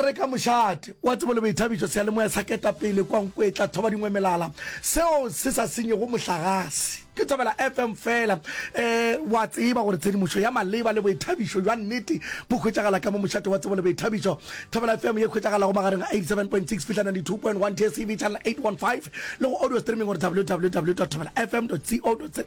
re ka mošate wa tsebo le boithabišo seyalemoya sa ketapele kwa nkwetla thoba dingwe melala seo se sa senyego mohlagase ke thobela fm fela um wa tseba gore tshedimošo ya maleba le boithabišo jwa nnete bo hwetšagala ka mo mošate wa tsebo le boithabišo thobela fm ye hwetšagalago magareng ga 87.6 fihla 92.1 tcv channel 815 le go audio streaming gore www thobela fm co za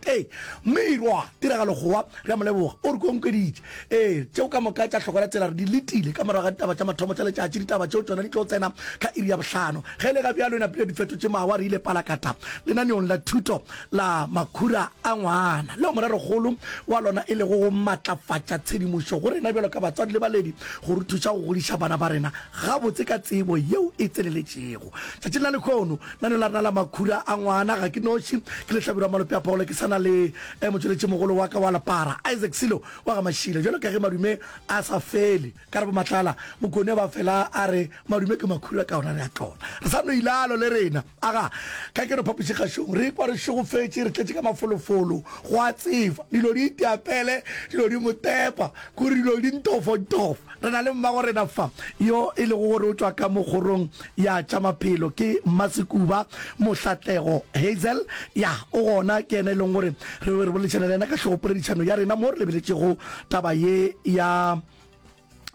mmirwa tiragalo gowa re a moleboga o re konkweditše Ee, tšeo ka moka tša hlokola tsela re di letile ka morago ga ditaba tša mathomo tša letšatši. Ditaba tšeo tšona di tlo tsena ka iri ya bohlano. Ge e le ga bjalo e napile di fetotše mawa, re ile palakata lenaneong la thuto la makhura a ngwana, leo morerokgolo wa lona e lego go matlafatša tshedimošo go rena bjalo ka batswadi le baledi go re thuša go godiša bana ba rena gabotse ka tsebo yeo e tseneletšego. Tšatšing la lekhono, Nna le larena la makhura a ngwana, ga ke noši, ke lehlabirwa malope a pholo, ke sa na le motšweletšimogolo wa ka wa lepara, Isaac Silo wa ga Mashila. Bjalo ka ge madume a sa fele ka re bomatlala, Mokone ba fela a re, Madume ke makhura ka ona re a tlola. Re sa no ilalo le rena, aga, ka ke re phapošikgašong, re ikwa re šogofetše, re tletše ka mafolofolo, gwa tseba, dilo di itea pele, dilo di motepa, k'o re dilo di ntofontofo. Re na le mmagorena fa, yo e lego gore o tšwa ka mo kgorong ya tša maphelo. Ke Mmasekuba Mohlatlego Hazel. Ya, o gona. Ke yena e leng gore re be re boledišana le yena ka hlogopoledišano ya rena mo re lebeletšego taba ye ya,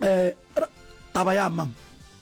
eh, taba ya, ma'am.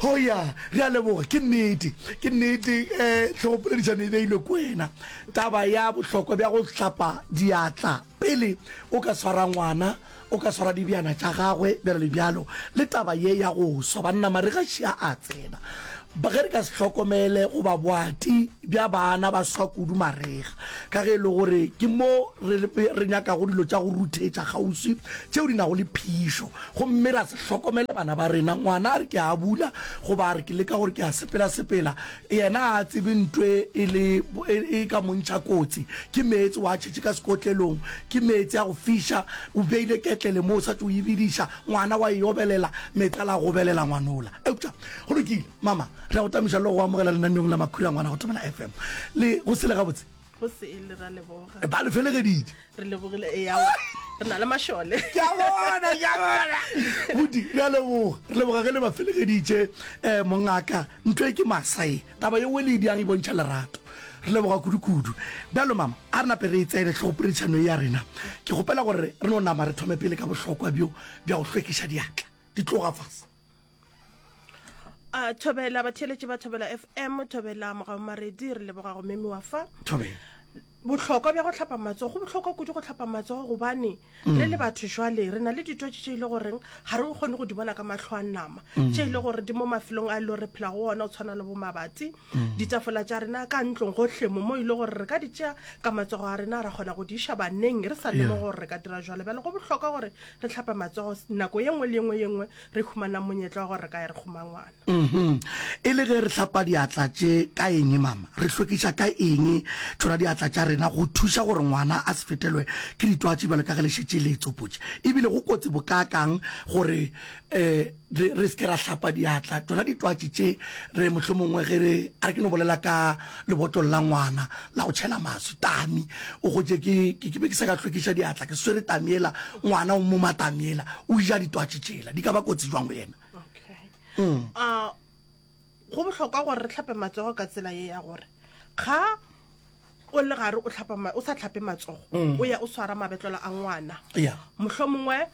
Ho ya, re a leboga. Ke nnete, ke nnete, eh, tlhogopoledišano e beilwe ke wena, taba ya bohlokwa bja go hlapa diatla pele o ka swara ngwana, o ka swara dibjana tša gagwe, bjalo le bjalo, le taba ye ya go swa. Banna, marega še a a tsena. Ba, ge re ka se hlokomele, goba boati bja bana ba swa kudu marega, ka ge e le gore ke mo re, re nyakago dilo tša go ruthetša kgauswi tšeo di nago le phišo. Gomme ra se hlokomele bana ba rena. Ngwana a re, Ke a bula, goba a re, Ke leka gore ke a sepelasepela. Yena ga a tsebe nto e e le, e, e ka mo ntšha kotsi. Ke meetse wa a tšhetše ka sekotlelong. Ke meetse a go fiša. O beile ketlele mo, o sa tšo e bediša. Ngwana wa e obelela. Meetse a la gobelela ngwanola. Eupša go lokile, Mama. Re a go tamiša le go go amogela lenaneong la Makhura, ngwana, go Thobela FM. Le go sele gabotse? go se e le ra leboga ba le felegeditse re lebogile e ya re na le mašole ke a bona ke a bona budi re a leboga re leboga ge le ba felegeditse um mongaka ntho e ke masae taba ye o le di a re bontšha lerato re leboga kudu-kudu bjalo mama a re nape re e tsene tlhogopoledišano e ya rena ke kgopela gore re no nama re thome pele ka bohlokwa bjo bja go hlwekiša diatla di tloga fase a thobela batheeletši ba thobela fm thobela mogaomaredi re leboga go memi wa fa thobela bohlokwa bja go tlhapa matsogo go bohlokwa kudu go tlhapa matsogo gobane mm. re le batho jwale re na le ditwatši tše e le goreng ga re kgone go di bona ka matlho a nama mm. tše e le gore di mo mafelong a e le gore re phela go ona o tshwana le bo mabati ditafola tša rena ka ntlong gohle mo mo ile gore re ka di tšea ka matsogo a rena ra kgona go di iša baneng re sa lemo gore re ka dira jalo bjale go bohlokwa gore re tlhapa matsogo nako ye nngwe le ye nngwe ye nngwe re humanang monyetla wa gore re ka ye re kgoma ngwana mhm. e le ge re tlhapa diatla tše ka eng mama re hlwekiša ka eng tšona diatla tša rena go thuša gore ngwana a se fetelwe ke ditwatši bjalo ka ge le šetše le tsopotše ebile go kotsi bokaakang gore um re re seke ra hlapa diatla tsona ditwatši tše re mohlomongwe ge re a re ke no bolela ka lebotolo la ngwana la go tšhela maswi tami o gotše ke ke be ke sa ka hlwekiša diatla ke swere tami ela ngwana o moma tami ela o ja ditwatši tšela di ka ba kotsi jwang go yena okay mm. uh, Go bohlokwa gore re hlape matsogo ka tsela ye ya gore ga o le gare o hlapa o sa tlhape matsogo o ya o swara mabetlelo a ngwana Yeah. mohlho mongwe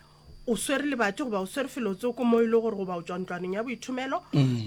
o swere lebati goba o swere felo tseo ko mo e le gore goba o tswa ntlwaneng ya boithomelo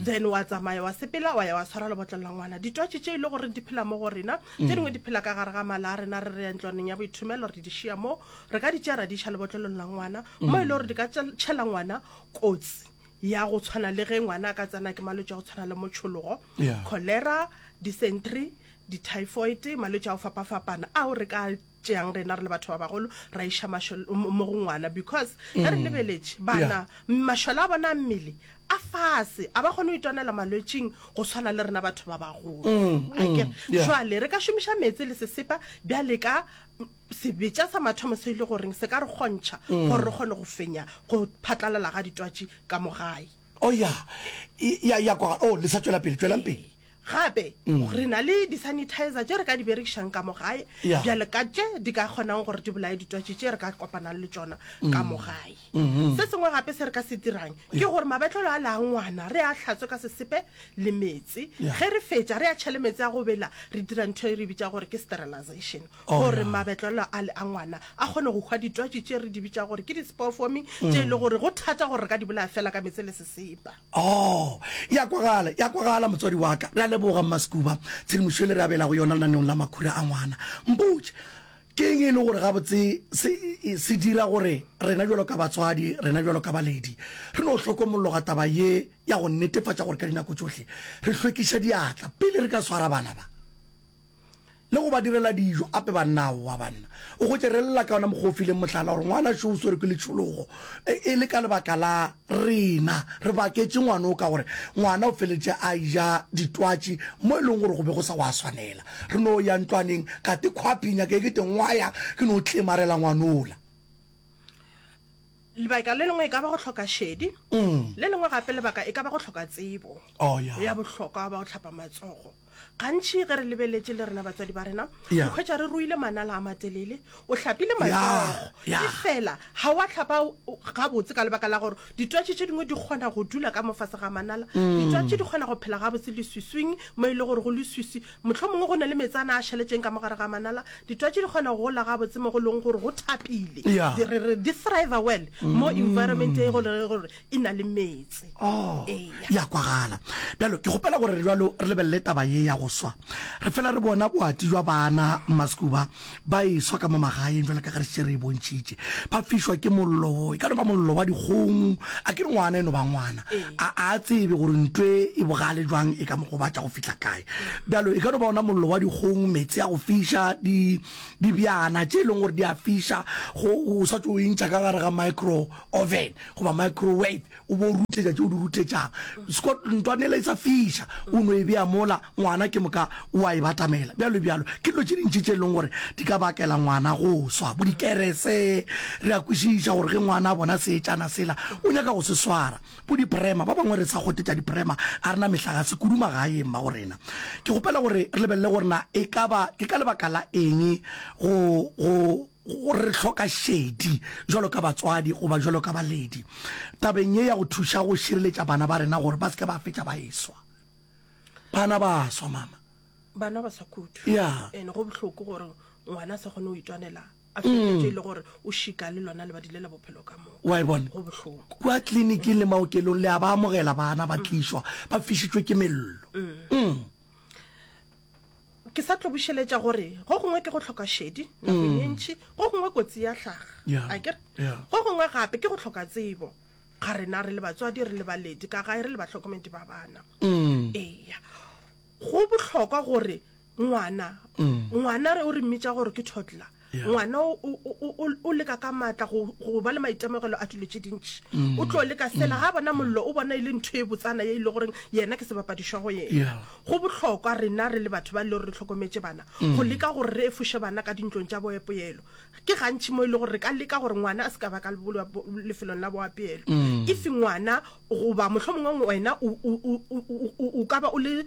then wa tsamaya wa sepela wa ya wa swara lebotlelo la ngwana ditwatši tše e le gore di phela mo go rena tse dingwe di phela ka gare ga mala a rena re re ya ntlwaneng ya boithomelo re di šia moo re ka di tšea ra di iša lebotlelong la ngwana mo e le gore di ka tšel- tšhela ngwana kotsi ya go tshwana le ge ngwana a ka tsena ke malwetse a go tshwana le motšhologo yeah. cholera dysentery di-typhoid malwetse a go fapafapana ao re ka tšeang rena re le batho ba bagolo ra iša mo go ngwana because ge re mm. lebeletše bana mašola a bona mmele a fase a ba kgone go itwanela malwetsing go tshwana le rena batho ba bagolo mm, mm, jale re ka šomiša meetse le sesepa bjale ka Sebetša sa mathomo se ile goreng se ka re kgontšha gore re kgone go fenya go phatlalala ga ditwatši ka mo gae? O ya, ya, ya kwa, o, le sa tšwela pele, tšwelang pele. Gape, re na le di-sanitizer tše re ka di berekišang ka mo gae, Ya. bjale ka tše di ka kgonago gore di bolaye ditwatši tše re ka kopanang le tšona ka mo gae. Se sengwe gape se re ka se dirang ke gore mabetlelo a le a ngwana re a hlatswe ka sesepe le meetse. Ya. Ge re fetša, re a tšhele meetse a go bela, re dira ntho e re e bitša gore ke sterilization. gore mabetlelo a le a ngwana a kgone go hwa ditwatši tše re di bitša gore ke di-spore forming tše e le gore go thata gore re ka di bolaya fela ka metse le sesepa o ya kwagala ya kwagala motswadi wa ka re a leboga mmasekuba tshedimošo e le re abelago yona lenaneong la makhura a ngwana mpotše ke eng e le gore gabotse se, se dira gore rena jalo ka batswadi rena jalo ka baledi re no hlokomologa taba ye ya go netefatša gore ka dinako tsohle re hlwekiša diatla pele re ka swara bana ba le go ba direla dijo. Ape bannao, wa banna, o go tšerelela ka wona mokgwa o fileng mohlala, gore ngwana šo o swerwe ke letšhologo, e, e le ka lebaka la rena. Re baketše ngwana o ka gore ngwana o feletše a eja ditwatši mo e leng gore go be go sa wa swanela. Re no ya ntlwaneng, ka te khwaphing ya ka e kete ngwaya, ke no tlemarela ngwana ola. Lebaka le lengwe e ka ba go hloka šedi, le lengwe gape lebaka e ka ba go hloka tsebo ya bohlokwa ba go hlapa matsogo. gantši ge re lebeletše le rena batswadi ba rena Yeah. o hwetša re ruile manala a matelele o hlapile matsogo yeah. efela ga wa tlhapa o- o- gabotse ka lebaka la gore ditwatši tše dingwe di kgona go dula ka mofase ga manala Mm. ditwatši di kgona go phela gabotse leswiswing mo e le gore go leswiswi motlho mongwe go na le metsana a šaletšeng ka mogare ga manala ditwatši di kgona go gola gabotse mo go leng gore go thapile Yeah. Di- re re di thrive well mo Mm. environment e gore gore e na le metse oh ya kwagala bjalo ke gopela gore re bjalo re lebelele taba ye ya go swa re fela re bona boati jwa bana maskuba ba e swa ka mo magaeng jalo ka ga re šere e bontšhitše ba fišwa ke mollo e ka no ba mollo wa dikgong a ke re ngwana e no ba ngwana a a tsebe gore ntwe e bogale jwang e ka mo gobatša go fitlha kae bjalo e ka no ba ona mollo wa dikgong metse ya go fiša di dibjana tše e leng gore di a fiša go o sa tso o intšha ka gare ga micro oven goba microwave o bo rutletša tše o di rutletšang scot ntwanela e sa fiša o no e bea mola ngwana ke moka o a e batamela bjalo bjalo ke dilo tše dintši tše e leng gore di ka bakela ngwana go swa bo dikerese re a kwešiša gore ge ngwana a bona seetšana sela o nyaka go se swara bo diprema ba bangwe re sa gotetša diprema a rena mehla ga se kudu magaeng ba go rena ke gopela gore re lebelele gore na e ka ba ke ka lebaka la eng go gore re hloka šedi jalo ka batswadi goba jalo ka baledi tabeng ye ya go thuša go šireletša bana ba rena gore ba seke ba fetša ba eswa bana ba swa mama bana ba sa kudu yeah. and go bohloko gore ngwana a sa kgone go itwanela a fetše mm. le gore o šika le lona lebadi le la bophelo ka moo wa e bona go bohloko kwa tleliniking le maokelong le a ba amogela bana ba mm. tlišwa ba fišitšwe ke mello mm. ke sa tlo bušeletša gore go gongwe ke go tlhoka šedi nako ye ntšhi go gongwe kotsi ya hlaga Yeah. a kere Yeah. go gongwe gape ke go tlhoka tsebo ga rena re le batswadi re le baledi ka gae re le batlhokomedi ba bana Mm. eya go bohlokwa gore ngwana ngwana re o re mmitša gore ke toddler ngwana o leka ka maatla go ba le maitemogelo a dilo tse dintši mm. o tlo leka fela ga bona mollo o bona e le ntho e botsana e ile goreng yena ke sebapadišwa go yena go bohlokwa rena re le batho ba e le gore re tlhokometse bana mm. go leka gore re efoše bana ka dintlong tša boepoelo ke gantšhi mo e le gore re ka leka gore ngwana a se ka ba ka lefelong la boapeelo mm. if ngwana Goba mohlomongwe wena o ka ba o le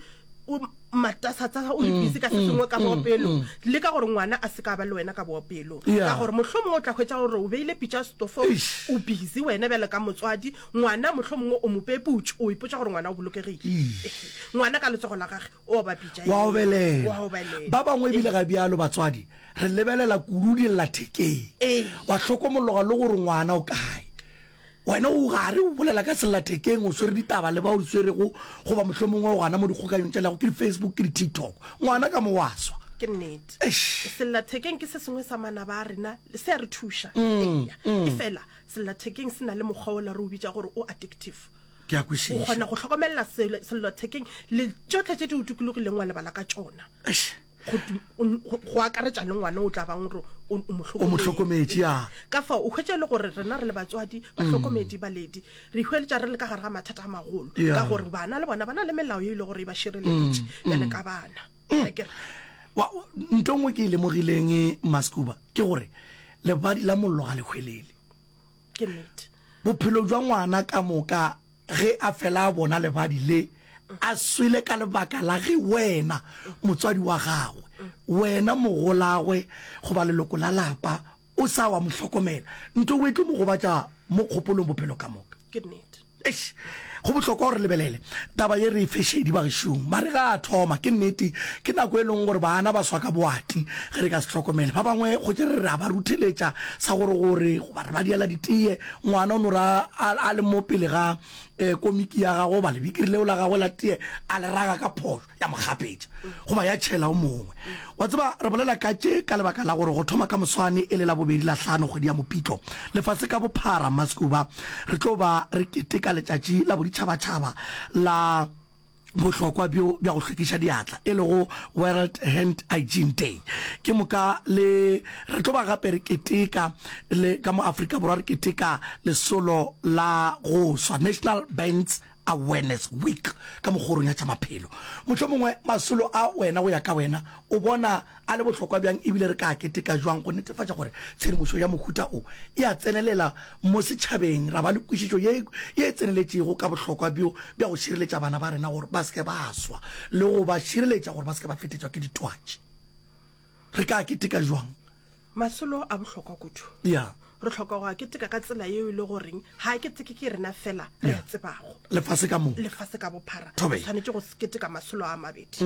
o matasatsasa o le mm, busy ka se mm, sengwe ka mm, boopelo le ka gore ngwana a se ka ba le wena ka boopelo ka gore motlho mongwe o tla hwetsa gore o beile pitša stofo o busy wena bjale ka motswadi ngwana motlho mongwe o mope putso o ipotsa gore ngwana o bolokegile ngwana ka letsogo la gage o ba pitšawa obelela ba bangwe ebile ga bjalo batswadi re lebelela kudu di lla thekeng wa tlhokomologa le gore ngwana o kae Wena o gare o bolela ka sellathekeng, o swere ditaba le ba o di swerego, goba mohlomongwe o gana mo dikgokanyong tša lego ke di-Facebook, ke di-TikTok. Ngwana ka mo wa swa. Ke nnete. Eish. Sellathekeng ke se sengwe sa manaba a rena, le se a re thuša. Eya. Efela, sellathekeng se na le mokgwa wola re o bitša gore o addictive. Ke a O kwešiša. kgona go hlokomelela sel- sellathekeng le tšohle tše di o tukulogileng wa lebala ka tšona. Eish. go akaretša le ngwana o tla bang gore o mohlokometši a ka fa o hwetša e le gore rena re le batswadi mm. bahlokomedi baledi re hweletša re le ka gare ga mathata a magolo ka gore bana le bona ba na le melao e le gore e ba šireleditše mm. bjale ka bana mm. nto ngwe ke e lemogileng e maskuba ke gore lebadi la mollo ga le hwelele bophelo jwa ngwana ka moka Ge a fela a bona lebadi le, a swele ka lebaka la ge wena, motswadi wa gagwe, wena mogolagwe goba leloko la lapa, o sa wa mo hlokomela, nto e tlo mo gobatša mo kgopolong bophelo ka moka. Ke nnete. Eish, go bohlokwa gore lebelele taba ye re e fe šedi bagešong. Mare ga a thoma, ke nnete, ke nako e leng gore baana ba swa ka boati ge re ka se hlokomele. Ba bangwe gotše re re a ba rutheletša sa gore gore goba re ba diela diteye Ngwana o no ra a, a le mo pele ga eh, komiki ya gagwe goba lebikiri leo la gagwe la tie a le raga ka phošo ya mo gapetša goba ya tšhela o mongwe wa tseba re bolela ka tše ka lebaka la gore go thoma ka moswane e le la bobedi la hlano kgwedi ya mopitlo lefase ka bophara mascuba re tlo ba re keteka letšatši la boditšhabatšhaba la bohlokwa bjo bja go hlwekiša diatla e lego World Hand Hygiene Day. Ke moka le re tlo ba gape re keteka le ka mo Afrika Borwa re keteka lesolo la go swa National Burns Awareness Week ka mokgorong ya tša maphelo. Mohlomongwe masolo a wena go ya ka wena o bona a le bohlokwa bjang e bile re ka a keteka bjang go netefatša gore tshedimošo ya mohuta o e a tsenelela mo setšhabeng ra ba le kwešišo ye e tseneletšego ka bohlokwa bjo bja go šireletša bana ba rena gore ba se ke ba swa le go ba šireletša gore ba se ke ba fetetšwa ke ditwatši. Re ka a keteka bjang? Masolo a bohlokwa kudu. Ya. re tlhoka go a keteka ka tsela yeo e le goreng ga a keteke ke rena fela re a tsebago lefase ka moo lefase ka bophara Thobe. Mm. tshwanetse go keteka masolo a mabedi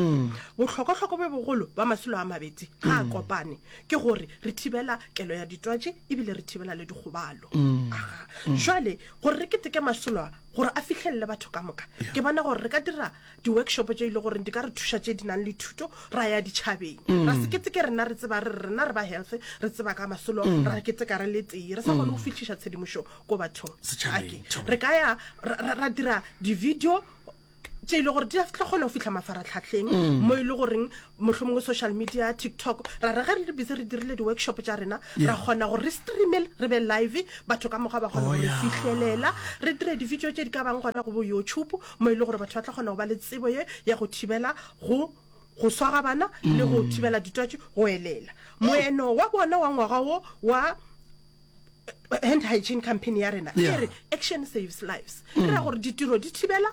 bohlokwahlokwa bjo bogolo ba masolo a mabedi ga a Mm. kopane ke gore re thibela kelo ya ditwatši ebile re thibela le dikgobalo Mm. Aha. Mm. jale gore re keteke masolo a gore a fihlelele batho ka moka ke bona gore re ka dira Di-workshop tše e le goreng di ka re thuša tše di nang le thuto ra ya ditšhabeng ra se keteke rena re tseba re re rena re ba health re tseba ka masolo ra keteka re le tee re sa kgone go fihliša tshedimošo ko bathong Setšhabeng, Ake, thobela. re ka ya ra- ra ra dira di-video tše e le gore di a tla kgona go fihla mafaratlhatlheng mo e le goreng mohlomongwe social media tiktok ra re ge re le busy re dirile di-workshop tša rena ra kgona gore re streamel re be live batho ka mokgwa ba kgona oh, go re fihlelela re dire di-video tše di ka bang gona go bo youtube mo e le gore batho ba tla kgona go ba le tsebo ye ya go thibela go go swara bana le go mm. thibela ditwatši go elela moeno wa bona wa ngwaga wo wa hand hygiene campaign ya rena Yeah. e re action saves lives e ra gore ditiro di thibela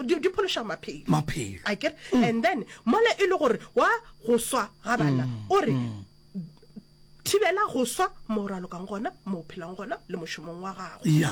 di di phološa maphelo Maphelo. a kere and then mola e le gore wa go swa ga bana o re thibela go swa mo o ralokang gona mo o phelang gona le mošomong wa gago ya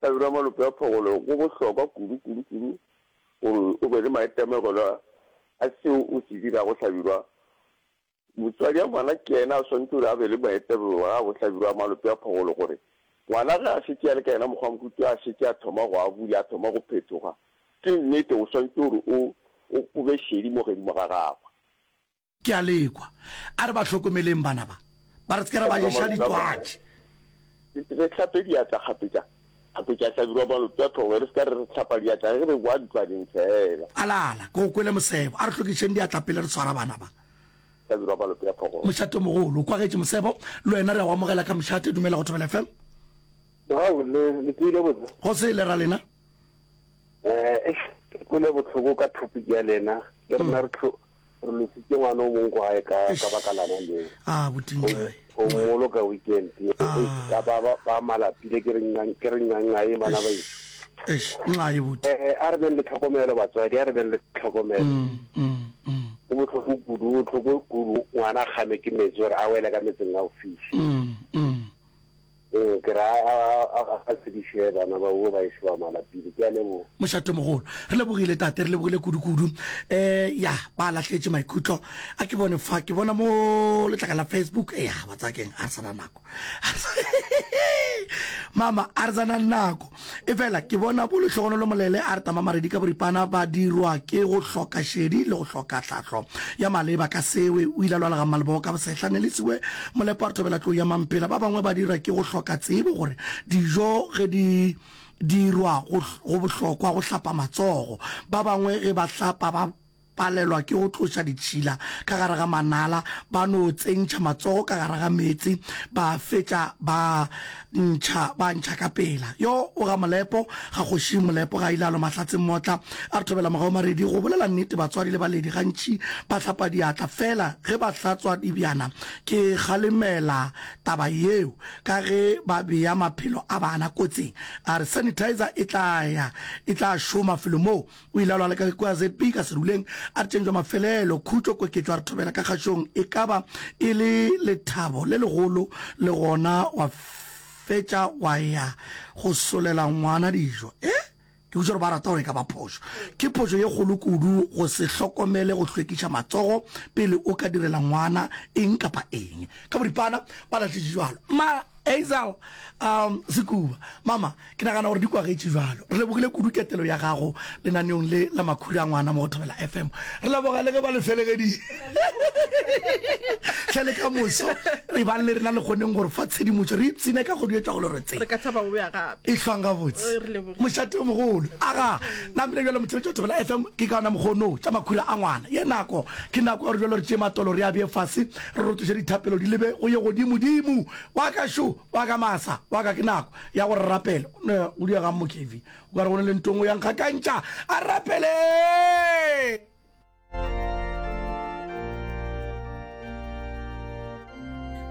Tlabelo ya malope a phogolo go bohlokwa kudu, kudu, kudu gore o be le maitemogelo a seo o se dirago hlabirwa. Motswadi a ngwana ke yena a swanetše gore a be le maitemogelo a go hlabirwa malope a phogolo gore ngwana ge a šetše a le ka yena mokgwa mokhutu a šetše a thoma go a bula, a thoma go phethoga. Ke nnete o swanetše gore o, o, o be šedi mo godimo ga gagwe. Ke a lekwa. A re ba hlokomeleng bana ba, ba re se ke ra ba ješa ditwatši. Re hlape diatla kgapetša, kgapetša, hlabirwa malope a tlhogo, re se ka re re hlapa diatla ge re boa ntlwaneng feela. A la, a la, ke go kwele mosebo. A re hlwekišeng diatla pele re swara bana ba. Hlabirwa malope a tlhogo. Mošatomogolo, o kwagetše mosebo. Le wena re a o amogela ka mošate. Dumela go Thobela FM. Mogau, le, le tsoile botse? Go sele, ra lena? Eh, eish, ke kwele bohloko ka topic ya lena. Le rena re tlho, gore lo sitše ngwana o mong ko gae ka ka baka lana leo a botintle o molo ka weekend ye ka ba ba ba malapile ke re ngang ke re ngang a e bana ba e eish nxa e botse eh a re beng le tlhokomelo batswadi a re beng le tlhokomelo mm mm mm go botlhoko kudu go tlhoko kudu ngwana a kgame ke metsi gore a wele ka metseng a o fihle mm mm Ee, ke ra a, a, a, a tsebiše bana ba wo ba ešo ba malapile. Ke a leboga. Mošatomogolo, re lebogile tate, re lebogile kudu-kudu. E, ya, ba lahletše maikutlo. A ke bone fa, ke bona mo letlaka la Facebook. E, ya, ba tsaya keng, a re sa na nako. Mama, a re sa na nako. Efela, ke bona bo lehlogonolo molele a re tamamaredi ka boripana ba dirwa ke go hloka šedi le go hloka tlhahlo ya maleba ka sewe. O ile a lwala ga Malebo ka bosehla, Nelisiwe Molepo a re thobela tlou ya Mampela. Ba bangwe ba dira ke go hloka tsebo gore dijo ge di dirwa go bohlokwa go hlapa matsogo. Ba bangwe ge ba hlapa ba. palelwa ke go tloša ditšhila ka gare ga manala, ba no tsentšha matsogo ka gare ga meetse, ba fetša ba ntšha, ba ntšha ka pela. Yo o ga Molepo, ga kgoši Molepo ga a ile a lwa mahlatseng motla a re thobela mogau maredi. Go bolela nnete, batswadi le baledi gantši ba hlapa diatla fela ge ba hlatswa dibjana. Ke kgalemela taba yeo ka ge ba bea maphelo a bana kotsing. A re sanitizer e tla ya e tla šoma felo moo O ile a lwala ka kwa ZP ka seruleng, a re tšentšwa mafelelo, khutšo, koketšo, a re thobela ka kgašong. E ka ba e le lethabo le legolo, le gona wa fetša wa ya go solela ngwana dijo. E? Ke botša gore ba rata gore e ka ba phošo. Ke phošo ye kgolo kudu go se hlokomele go hlwekiša matsogo pele o ka direla ngwana eng kapa eng. Ka boripana ba lahlešitšwe bjalo. Ma. Hazel, um, Sekuba, mama, ke nagana gore di kwagetše jalo. Re lebogile kudu ketelo ya gago lenaneong le la makhuri a ngwana mo go Thobela FM. Re leboga le ge ba le felegedile. Hle le ka moso, re bang le rena le kgoneng gore fa tshedimotšo re ipsine ka go duetša go le re tse. Re ka thaba go boya gape. E hlwang gabotse. Re leboge. Mošate o mogolo. Aga, na bile bjalo motšheletšo wa Thobela FM ke ka ona mokgono tša makhuri a ngwana. Ye nako, ke nako ya gore bjalo re tšee matolo re a bee fase. Re rotloša dithapelo di lebe go Yegodimo, Dimo wa ka šo, wa ka masa, wa ka. Ke nako ya go re rapela. Nna go diregang mo Kevin? O ka re go na le ntong o yang kgakantša. A rapele!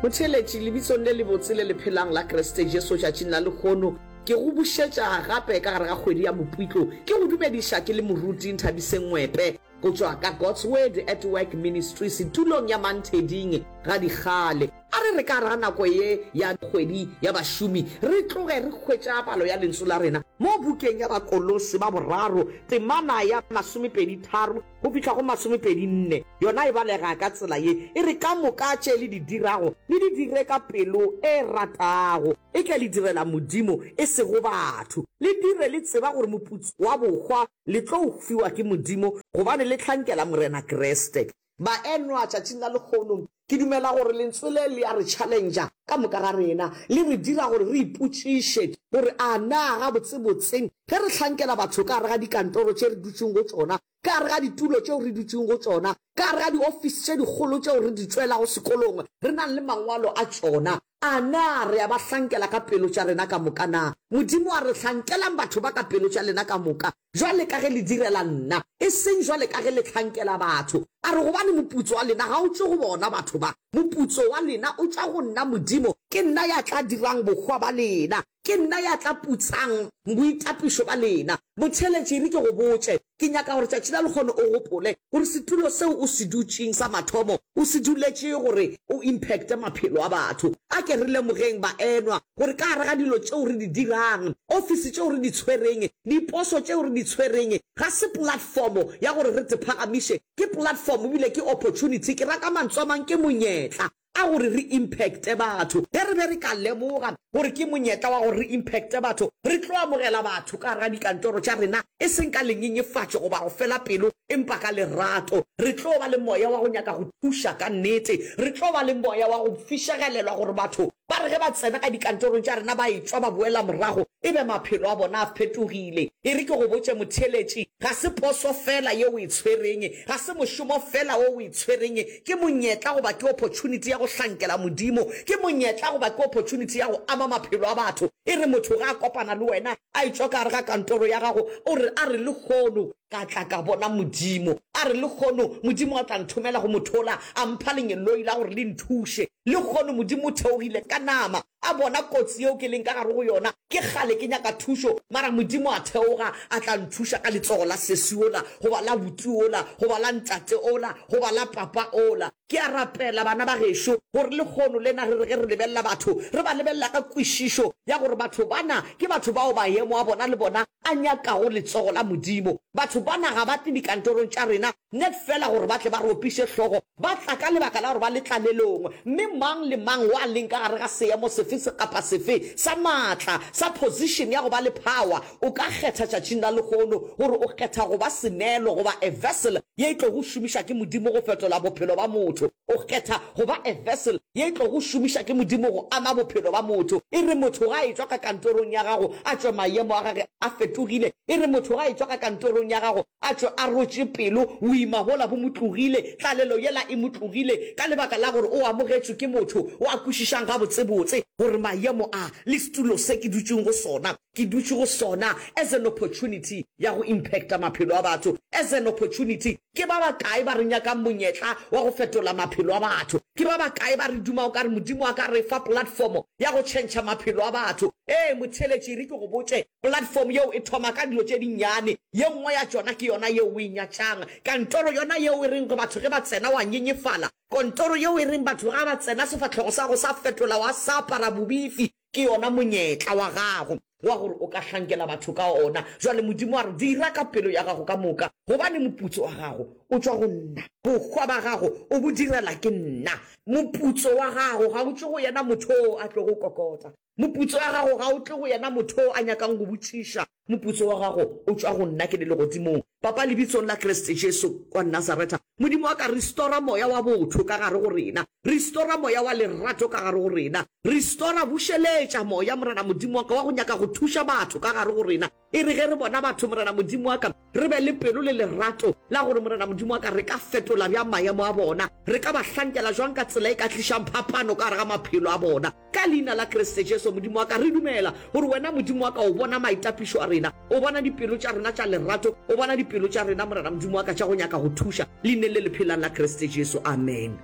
Motheeletši, lebitsong le lebotse le le phelang la Kriste Jesu tšatšing la lehono, ke go bušetša gape ka gare ga kgwedi ya Mopitlo. Ke go dumediša ke le moruti Nthabiseng Ngwepe. go tšwa ka God's Word at Work Ministry setulong ya Mantheding ga dikgale. A re re ka ra nako ye ya kgwedi ya bašomi re tloge re hwetša palo ya lentsu la rena mo bukeng ya Bakolose ba boraro temana ya masomepedi tharo go fihla go masomepedi nne. Yona e balega ka tsela ye e re, Ka moka tše le di dirago le di dire ka pelo e ratago, e ke le direla Modimo e sego batho, le dire le tseba gore moputso wa bohwa le tlo fiwa ke Modimo gobane le hlankela Morena Kriste. Baenwa, tšatšing la lehono, ke dumela gore Lentswe le le a re challengea ka moka ga rena. Le re dira gore re ipotšiše gore, A na gabotsebotse ge re hlankela batho ka gare ga dikantoro tše re dutšeng go tšona, ka gare ga ditulo tšeo re dutšeng go tšona, ka gare ga diofisi tše dikgolo tšeo re di tšwelago sekolong re nang le mangwalo a tšona, A na re a ba hlankela ka pelo tša rena ka moka? Na Modimo a re, Hlankelang batho ba ka pelo tša lena ka moka, bjale ka ge le direla nna, e seng bjale ka ge le hlankela batho? A re, Gobane moputso wa lena ga o tšwe go bona batho ba. Moputso wa lena o tšwa go nna Modimo. Ke nna ya tla dirang bohwa ba lena. Ke nna ya tla putsang boitapišo ba lena. Motheeletši, re ke go botše, ke nyaka gore tšatši la lekgono o gopole gore setulo seo o se dutšeng sa mathomo o se duletše gore o impacte maphelo a batho. A ke re lemogeng, baenwa, gore ka gare ga dilo tšeo re di dirang, ofisi tšeo re di tshwereng, diposo tšeo re di tshwereng, ga se platform ya gore re tephagamiše. Ke platform ebile ke opportunity. Ke ra ka mantswe a mang, ke monyetla. a gore re impacte batho. Ge re be re ka lemoga gore ke monyetla wa gore re impacte batho, re tlo amogela batho ka gare ga dikantoro tša rena, e seng ka lenyenyefatšo goba go fela pelo, empa ka lerato. Re tlo ba le moya wa go nyaka go thuša ka nnete. Re tlo ba le moya wa go fišegelelwa gore batho ba re ge ba tsena ka dikantorong tša rena ba etšwa ba boela morago e be maphelo a bona a fetogile. E re ke go botše, motheeletši, ga se poso feela ye o e tshwereng, ga se mošomo feela wo o e tshwereng, ke monyetla goba ke opportunity ya go hlankela Modimo, ke monyetla goba ke opportunity ya go ama maphelo a batho. E re motho ge a kopana le wena, a etšwa ka gare ga kantoro ya gago, o re, a re lehono ka tla ka bona Modimo, a re lehono Modimo a tla nthomela go motho ola, a mpha lenyeloi la gore le nthuše, lehono Modimo o theogile ka nama, A bona kotsi yeo ke leng ka gare go yona. Ke kgale ke nyaka thušo, mara Modimo a theoga a tla nthuša ka letsogo la sesi wola, goba la buti wola, goba la ntate ola, goba la papa ola. Ke a rapela, bana ba gešo, gore lekgono lena re re ge re lebelela batho, re ba lebelela ka kwešišo ya gore batho bana ke batho bao mayemo a bona le bona a nyakago letsogo la Modimo. Batho bana ga ba tle dikantorong tša rena Net feela gore ba tle ba re opiše hlogo, ba tla ka lebaka la gore ba le tlalelong, mme mang le mang wa leng ka gare ga seemo sefe se kapa sefe sa maatla, sa position ya go ba le power, o ka kgetha tšatšing la lehono gore o kgetha go ba seneelo goba a vessel ye e tlogo šomiša ke Modimo go fetola bophelo ba motho. O kgetha go ba a vessel ye e tlogo šomiša ke Modimo go ama bophelo ba motho. E re motho ga a etšwa ka kantorong ya gago a tšwe mayemo a gage a fetogile. E re motho ga a etšwa ka kantorong ya gago A tšo a rotše pelo, boima bola bo mo tlogile, tlalelo yela e mo tlogile, ka lebaka la gore o amogetšwe ke motho o a kwešišang gabotsebotse gore maemo a, le setulo se ke dutšeng go sona, ke dutše go sona as an opportunity ya go impacta maphelo a batho, as an opportunity. Ke ba bakae ba re nyakang monyetla wa go fetola maphelo a batho? Ke ba bakae ba re dumang o ka re Modimo a ka re fa platform ya go tšhentšha maphelo a batho? Ee, motheeletši, e re ke go botše, Platform yeo e thoma ka dilo tše dinnyane, ye nngwe ya tšona ke yona yeo o e nyatšang, kantoro yona yeo e reng batho ge ba tsena wa nyenyefala, kontoro yeo e reng batho ga ba tsena sefahlogo sa gago sa fetola wa sa apara bobifi, ke yona monyetla wa gago wa gore o ka hlankela batho ka ona. Bjale Modimo a re, Dira ka pelo ya gago ka moka, gobane moputso wa gago o tšwa go nna, bohwa ba gago o bo direla ke nna. Moputso wa gago ga o tšwe go yena motho wo a tlogo kokota, Moputso wa gago ga o tle go yena motho yo a nyakang go botšiša. Moputso wa gago o tšwa go nna. Ke le legodimong, Papa, lebitsong la Kriste Jesu wa Nazaretha. Modimo wa ka, restora moya wa botho ka gare go rena. Restora moya wa lerato ka gare go rena. Restora, bušeletša, Moya, Morena Modimo wa ka, wa go nyaka go thuša batho ka gare go rena. E re ge re bona batho, Morena Modimo wa ka, re be le pelo le lerato la gore, Morena Modimo wa ka, re ka fetola bjang maemo a bona, re ka ba hlankela jwang ka tsela e ka tlišang phapano ka gare ga maphelo a bona. Ka Leina la Kriste Jesu, Modimo wa ka, re dumela gore Wena, Modimo wa ka, o bona maitapišo a rena, o bona dipelo tša rena tša lerato, o bona dipelo tša rena, Morena Modimo wa ka, tša go nyaka go thuša. Leineng le le phelang la Kriste Jesu. Amen.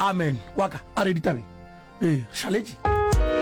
Amen. Wa ka, a re ditabeng. Ee, re šaletše.